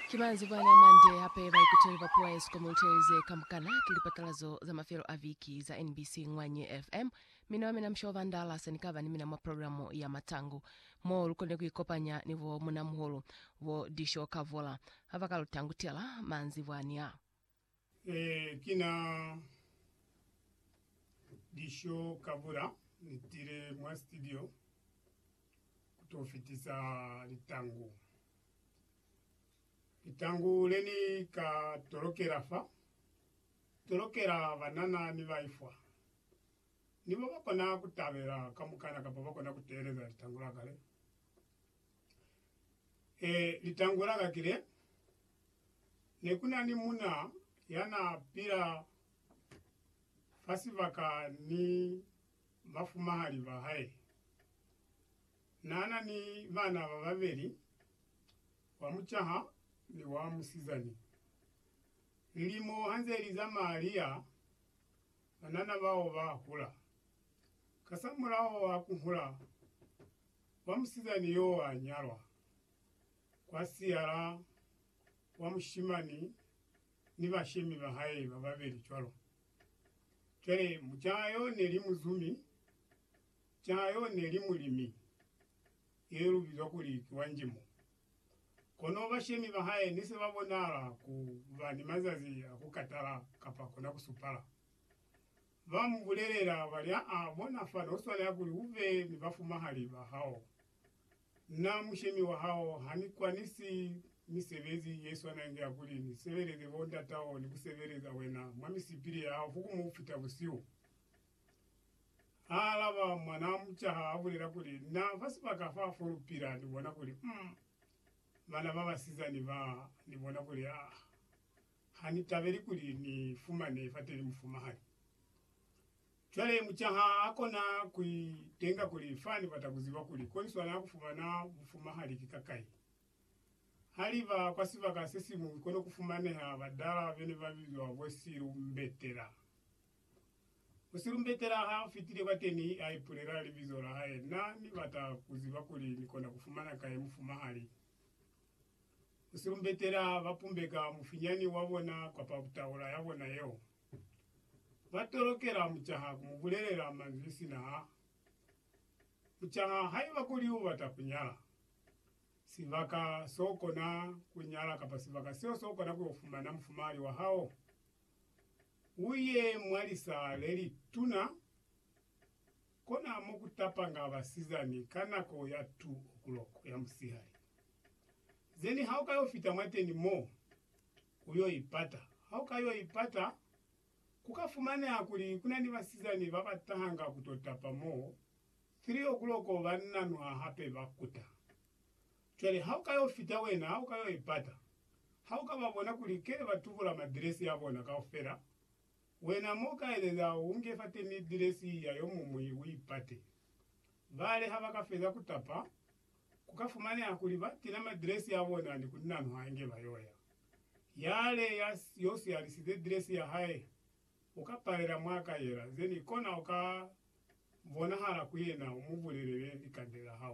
Ki manzwi bani a mande hape baipiteli ba puo ya Eskom ba utelize ka mukana ki lipatalazo za mafelo a viki za NBC Ngwanye FM? Mina wa mina Msho Vandala se ni ka ba ni mina mwa programo ya Matangu, mo lu konile ku ikopanya ni bo munamuhulu bo Disho Kavola ha ba ka lu tangutela manzwi bwani a. Ee, ki na lisho ka bula. Ni tile mwa studio ku to fitisa litangu. Litangu le ni ka tolokela fa, tolokela banana ni baifwa. Ni bo ba kona ku tabela kamukana kapa ba kona ku teeleza litangu la ka le. Ee, litangu la ka ki le. Nekunani muna yana pila fa sibaka ni bafumahali ba hae. Naana ni bana bababeli, wa mucaha ni wa musizani. Lilimo hanze li zamaya liya, banana bao ba hula. Kasamulaho wa kuhula, wa musizani yoo a nyalwa. kwa siala wa mushimani ni bashemi ba hae ba babeli cwalo. Cwale, mucaa yo ne li muzumi, caa yo ne li mulimi, ye lu bizwa kuli ki wa njimo. Kono bashemi ba hae ne se ba bonahala ku ba ni mazazi a ku katala kapa kona ku supala. Ba mu bulelela, ba li, Aa, bona fani, u swanela kuli u be ni bafumahali ba hao. Na mushemi wa hao, ha ni kwanisi misebezi ye swana inge ya kuli ni sebeleze bo ndatao ni ku sebeleza wena mwa misipili ya hao fukumu kufita busihu? Ha alaba, mwanaa mucaha a bulela kuli, Na fa sibaka fa fo lu pila, ni bona kuli, um, bana ba basizani ba, ni bona kuli, ah, ha ni tabeli kuli ni fumane fateni mufumahani. Cwale mucaha a kona ku i tenga kuli, Fa ni bata ku ziba kuli ko ni swana ku fumana bufumahali ki kakai. Ha li ba kwa sibaka se siñwi ko ne ku fumaneha badala be ne ba bizwa bo silumbetela. Musilumbetela ha a fitile kwateni a ipulela libizo la hae, Na ni bata ku ziba kuli ni kona ku fumana kai mufumahali. Musilumbetela ba pumbeka mufinyani wa bona kwapa taula ya bona yeo. ba tolokela mucaha ku mu bulelela manzwi sina ha mucaha haiba kuli u bata ku nyala, sibaka so kona ku nyala kapa sibaka seo so kona ku yo fumana mufumahali wa hao. U ye mwa lisa le li tuna, kona mo ku tapanga basizani ka nako ya 2 o'clock ya musihali, zeni ha u ka yo fita mwateni mo. Ku yo ipata. Ha u ka yo ipata, ku ka fumaneha kuli ku na ni basizani ba ba tahanga ku to tapa mo 3 o'clock ba nanuha hape ba kuta. Cwale ha u ka yo fita wena, ha u ka yo ipata, ha u ka ba bona kuli kele ba tubula madiresi a bona kaufela, wena mo u ka elela u nge fateni diresi ya yo muñwi u ipate. Bale ha ba ka feza ku tapa, ku ka fumaneha kuli ba tila madresi a bona ni ku nano hange ba yo ya. Yale ya yo siyalisize dresi ya hae, u ka palela mwa ka yela, zeni kona u ka bonahala ku yena u mu bulelele likande la hao.